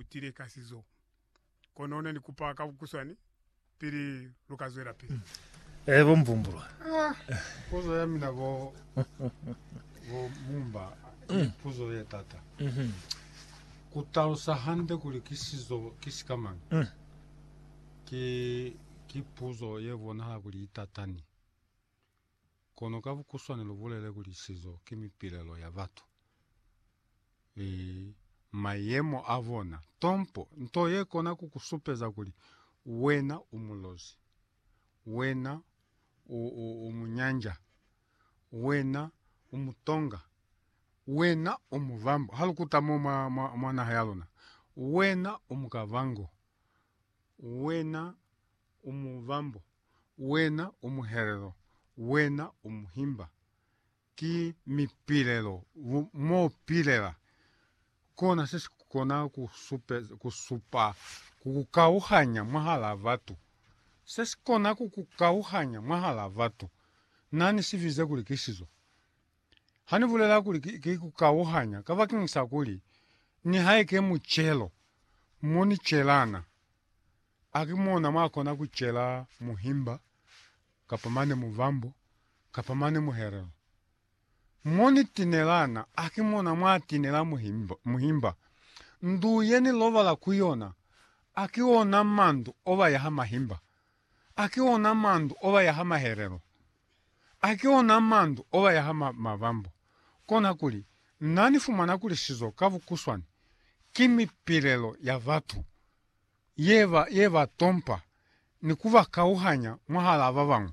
utile ka sizo. Kono ne ni kupa ka bukuswani pili luka zwela pili. Eh bo Mvumbulwa. Ah, puzo ya mina bo bo Mumba, mm. puzo ye tata. Mm -hmm. Kutalusa hande kuli ki sizo ki sikamang. Mm. Ki ki puzo ye bonahala kuli itatani. Kono ka bukuswane lu bulele kuli sizo ki mipilelo ya batu, e, mayemo a bona. Tompo, nto ye kona ku ku supeza kuli wena u mulozi, wena u, u, u munyanja, wena u mutonga, wena u muvambo, ha lu kuta mo mwa, mwa, mwa naha ya luna, wena u mukavango, wena u muvambo. Wena u muhelelo, Wena u muhimba. Ki mipilelo u mo pilela. Kona se si kona ku supe, ku supa ku ku kauhanya mwahal'a batu. Se si kona ku ku kauhanya mwahal'a batu. Na ni si bize kuli ki sizo. Ha ni bulela kuli ki ku kauhanya kabakeng sa kuli nihaike mu celo mo ni celana, a ki mona mwa kona ku cela muhimba, kapa mane muvambo, kapa mane muhelelo? Mo ni tinelana, a ki mona mwa tinela muhimba? muhimba? Ndu ye ni lobala ku yona, a ki ona mandu o ba yaha mahimba? Aki ona mandu oba yaha mahelelo, aki ona mandu oba yaha ma, mabambo. Kona kuli, Na ni fumana kuli sizo ka bukuswani ki mipilelo ya batu ye ba, ye ba tompa ni ku ba kauhanya mwahalaa ba bañwi.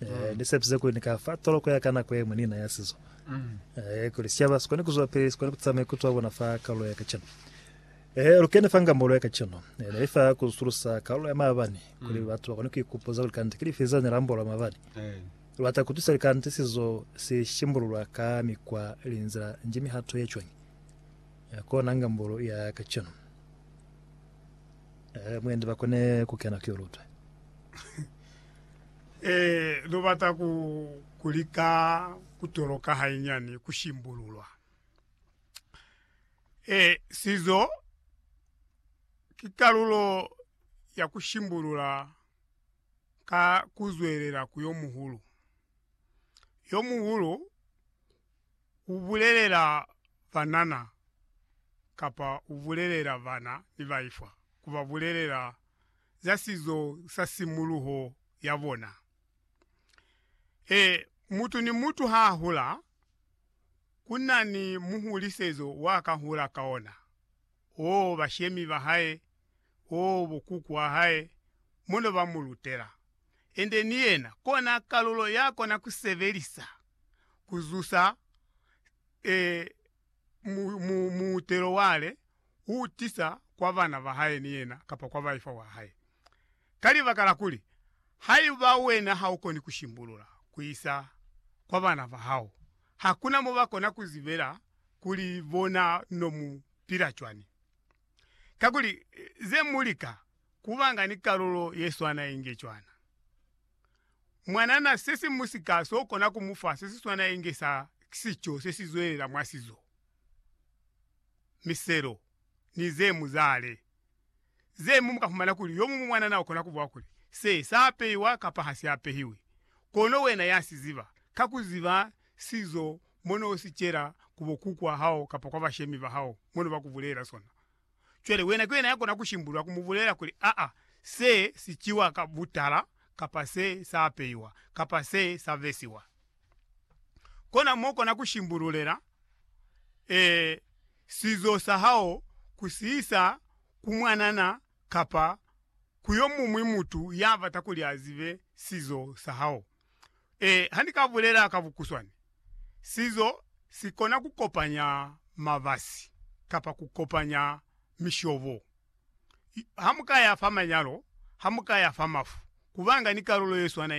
Eh, ni sepise kuli ni ka fa toloko ya ka nako ye ñwi ni inaya sizo. Eh, kuli sicaba si kone ku zwapili, si kone ku tisa maikuto a bona fa kalulo ya kacenu. Eh, lu kene fa ngambolo ya kacenu. Eh, ne i fa ku sulusa kalulo ya maabani, kuli batu ba kone ku ikupuza kuli kanti ki lifi zeo ne la ambolwa maabani. Lu bata ku tusa kuli kanti sizo si shimbululwa ka mikwa ili nzila nji mihato ye cwañi. Eh, kona ngambolo ya kacenu. Eh, mwendi ba kone ku kena ku yo lutwe. Ee, lu bata ku, ku lika ku toloka hainyani ku shimbululwa. Ee, sizo ki kalulo ya ku shimbulula ka ku zwelela ku yo muhulu. Yo muhulu u bulelela banana kapa u bulelela bana ni baifwa, ku ba bulelela za sizo sa simuluho ya bona. Ee, mutu ni mutu ha a hula, ku na ni muhulisezo wa ka hula ka ona, oo bashemi ba hae, oo bokuku a hae, mo ne ba mu lutela. Ende ni yena kona kalulo ya kona ku sebelisa ku zusa ee, mu, mu, muutelo wale u tisa kwa bana ba hae ni yena kapa kwa baifa wa hae. Ka libaka la kuli, haiba wena ha u koni ku shimbulula ku isa kwa bana ba hao, hakuna mo ba kona ku zibela kuli bona no mu pila cwani. Kakuli, ze mu lika ku ba nga ni kalulo ye swana inge cwana. mwanana sesimusika so kona ku mu fa sesiswana inge sa sico sesizwelela mwa sizo, miselo, ni ze muzale. Ze mu muka fumana kuli yo mumu mwanana ukona kubuwa kuli, Se sa peiwa kapa ha si apehiwi. Kono wena ya si ziba, ka ku ziba sizo mo no si cela ku bo kukwa hao kapa kwa bashemi ba hao mo no ba ku bulela sona, Cwale wena ki wena ya kona ku shimbulula ku mu bulela kuli, Aa, se si ciwa ka butala, kapa se sa apeiwa, kapa se sa vesiwa. Kona mo kona ku shimbululela, ee, sizo sa hao ku si isa ku mwanana kapa ku yo muñwi mutu ya bata kuli a zibe sizo sa hao. Ee, ha ni ka bulela ka bukuswani, sizo si kona ku kopanya mabasi kapa ku kopanya mishobo. Ha mu ka ya fa manyalo, ha mu ka ya fa mafu, ku banga ni kalulo ye swanañi?